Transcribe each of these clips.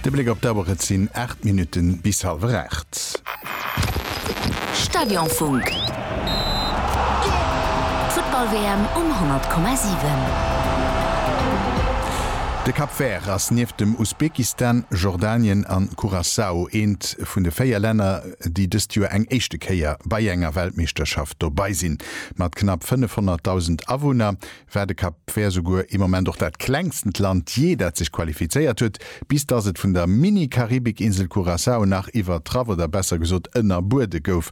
De Bléck op d'Auer, et sinn 8 Minutten bis halwer 8. Stadionfunk. D'Futtball-WM um 100,7. De Cap Vert ass nieft dem Usbekistan, Jordanien an Curaçao eent vun de 4 Länner, déi dëst Joer eng éischte Kéier bei enger Weltmeeschterschaft dobei sinn. Mat knapp 500.000 Awunner war de Cap Vert souguer ee Moment och dat klengstent Land jee, dat sech qualifizéiert huet, bis dass et vun der Mini-Karibik-Insel Curaçao nach iwwertraff oder besser gesot ënnerbuede gouf.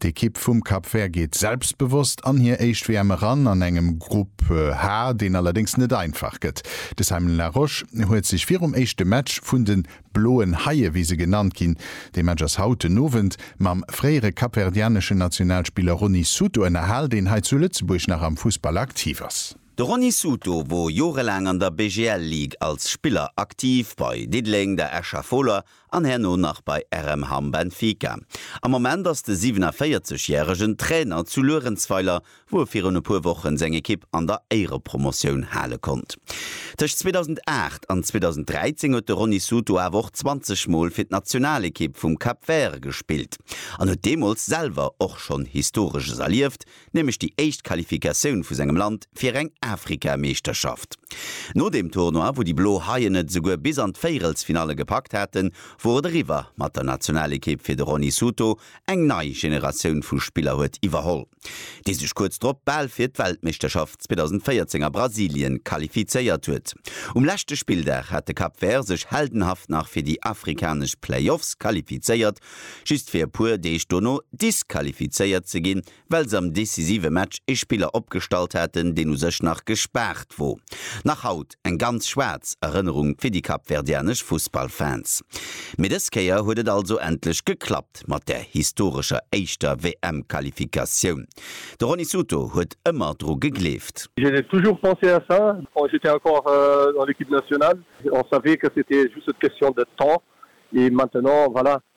D'Ekipp vum Cap Vert geet selbstbewosst an hir éischt WM eran, an engem Grupp H, deen allerdéngs net einfach gëtt. De Simon Larosche huet sech virum éischte Match vun de Bloen Haie wéi se genannt ginn. Dee Match ass haut den Owend. Mam fréiere kapverdianeschen Nationalspiller Rony Souto ënnerhal, deen hei zu Lëtzebuerg nach am Fussball aktiv ass. De Rony Souto wor jorelaang an der BGL Ligue als Spiller aktiv, bei Diddeleng, der Escher Foler an herno nach bei RM Hamm Benfica. Am Moment ass de 47 järegen Trainer zu Luerenzweiler wou e virun e puer Wochen seng Ekipp an der Éierepromotioun hale konnt. Tëscht 2008 an 2013 huet de Rony Souto awer och 20 Mol fir d'Nationalekipp vum Cap Vert gespillt an huet deemools selwer och schonn Historesches erlieft, nämlech déi éischt Qualifikatioun vu sengem Land fir eng Afrikameeschterschaft. No deem Tournoi, wou déi Blo Haien et esouguer bis an d'Véierelsfinalle gepackt haten, wor et eriwwer mat der Nationalekipp fir de Rony Souto. Eng nei Generatioun vu Spiller huet iwwerholl. déi sech kuerz drop bal fir d'Weltmeeschterschaft 2014 a Brasilien qualifizéiert huet. Um leschte Spilldag hat de Cap Vert sech heldenhaft nach fir déi afrikanesch Playoffs qualifizéiert, just fir e puer Deeg dono disqualifizéiert ze ginn, well se am decisive Match ee Spiller opgestallt haten, deen u sech nach gespaart wor. Nach haut Eng ganz schwaarz Erënnerung fir déi kapverdianesch Fussballfans. Mee dës Kéier huet et also endlech geklappt mat der historescher éischter WM-Qualifikatioun. De Rony Souto huet ëmmer dru gegleeft. J'ai toujours pensé à ça quand j'étais encore dans l'équipe nationale. On savait que c'était juste une question de temps et maintenant voilà,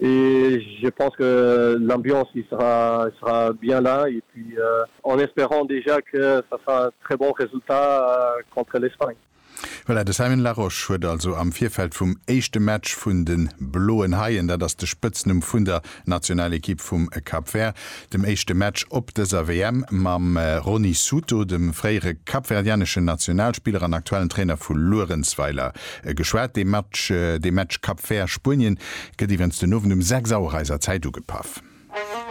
Et je pense que l'ambiance y sera y sera bien là et puis en espérant déjà que ça sera un très bon résultat contre l'Espagne. Voilà, de Simon Larosche huet also am Virfeld vum éischte Match vun de Bloen Haien, dat ass de Spëtznumm vun der Nationalekipp vum Cap Vert, dem éischte Match op dëser WM mam Rony Souto, dem fréiere kapverdianeschen Nationalspiller an aktuellen Trainer vu Luerenzweiler, geschwat. De Match de Match Cap Vert-Spuenien gëtt iwwens den Owend um 6 Auer eiser Zäit ugepaff.